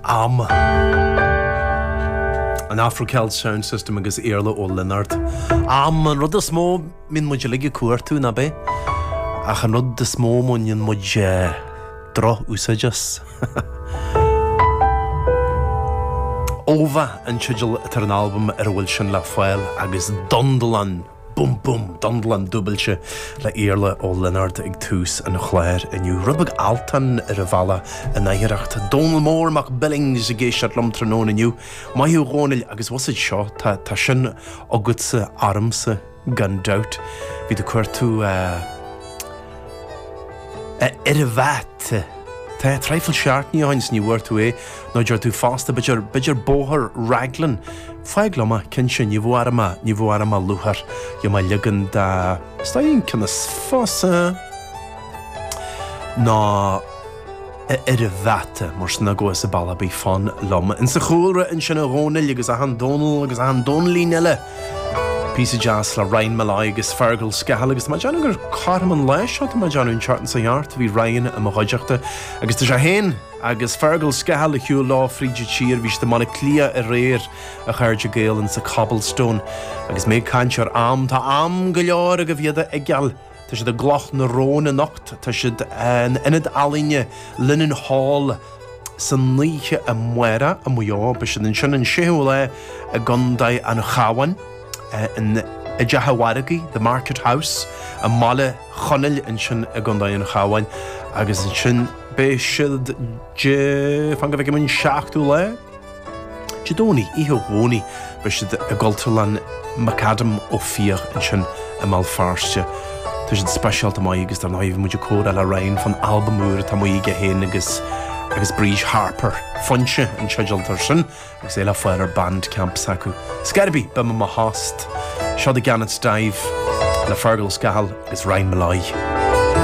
am, an Afro Celt Sound System agus Iarla Ó Lionáird. Am, an rud is mó a mbíonn muid uilig ag cuartú, nach b'é? Ach an rud is mó a ndéanann muid eh, droch-úsáid as. Ova an teideal atá ar an albam ar a bhfuil sin le fáil agus Dundalán. Bum bum! Dundlan dúbailte le Iarla Ó Lionáird ag tús an chláir inniu. Rud beag Altan ar an bhealach in oidhreacht Dónall Mór Mac Billings ag éisteacht liom tráthnóna inniu. Maith thú a Dhónaill agus bhfuil a fhios agat seo, tá, tá sin agatsa, ormsa, gan dabht. Bhí tú ag cuartú, eh, A Fhir a' Bháta traidhfil seachtainí ó shin is ní bhfuair tú é, nó deir tú fosta, b'fhéidir, b'fhéidir Bóthar Raglan. Fág liom é, cinnte, ní bhfuair mé, ní bhfuair mé luathar liom a' leagan de. Is d'aon ciona fosta ná. a fhir a bháta, mar sin agus a balla bí fonn liom. Insa chúlra ansin a Dhónaill agus achan Dónall agus achan Dónaillín eile. Píosa deas le Ryan Molloy agus Fergal Scahill agus tá mé ag déanamh gur cothrom an lá seo tá mé ag déanamh an tseachtain seo thart a bhí Ryan i mo chuideachta agus tá sé féin agus Fergal Scahill ar shiúl leo fríd an tír bhí siad i mBaile Átha Cliath aréir a chairde Gael insa Cobblestone agus mé ag caint ar am tá am go leor agaibh iad a fheiceáil Tá siad i gCloch na Rón anocht. Tá siad in Ionad Ealaíne Linenhall san oíche amárach i Maigh Eo. Beidh siad ansin an 6ú lá i gContae an Chabháin in, i dTeach an Mhargaidh, The Market House, i mBaile Chonaill ansin i gContae an Chabháin. Agus ansin beidh siad, fan go bhfeicim, an 7ú lá? Dé Domhnaigh, oíche Dhomhnaigh, beidh siad i gCultúrlann McAdam Ó Fiaich ansin i mBéal Feirste. Tá siad speisialta maith agus dar ndóigh bhí muid ag comhrá le Ryan fán albam úr atá amuigh aige féin agus agus Bríd Harper. Foinse an teideal atá air sin agus é le fáil ar Bandcamp s'acu. Scor ar bith, beidh mé i mo thost. Seo The Gannet's Dive le Fergal Scahill agus Ryan Molloy.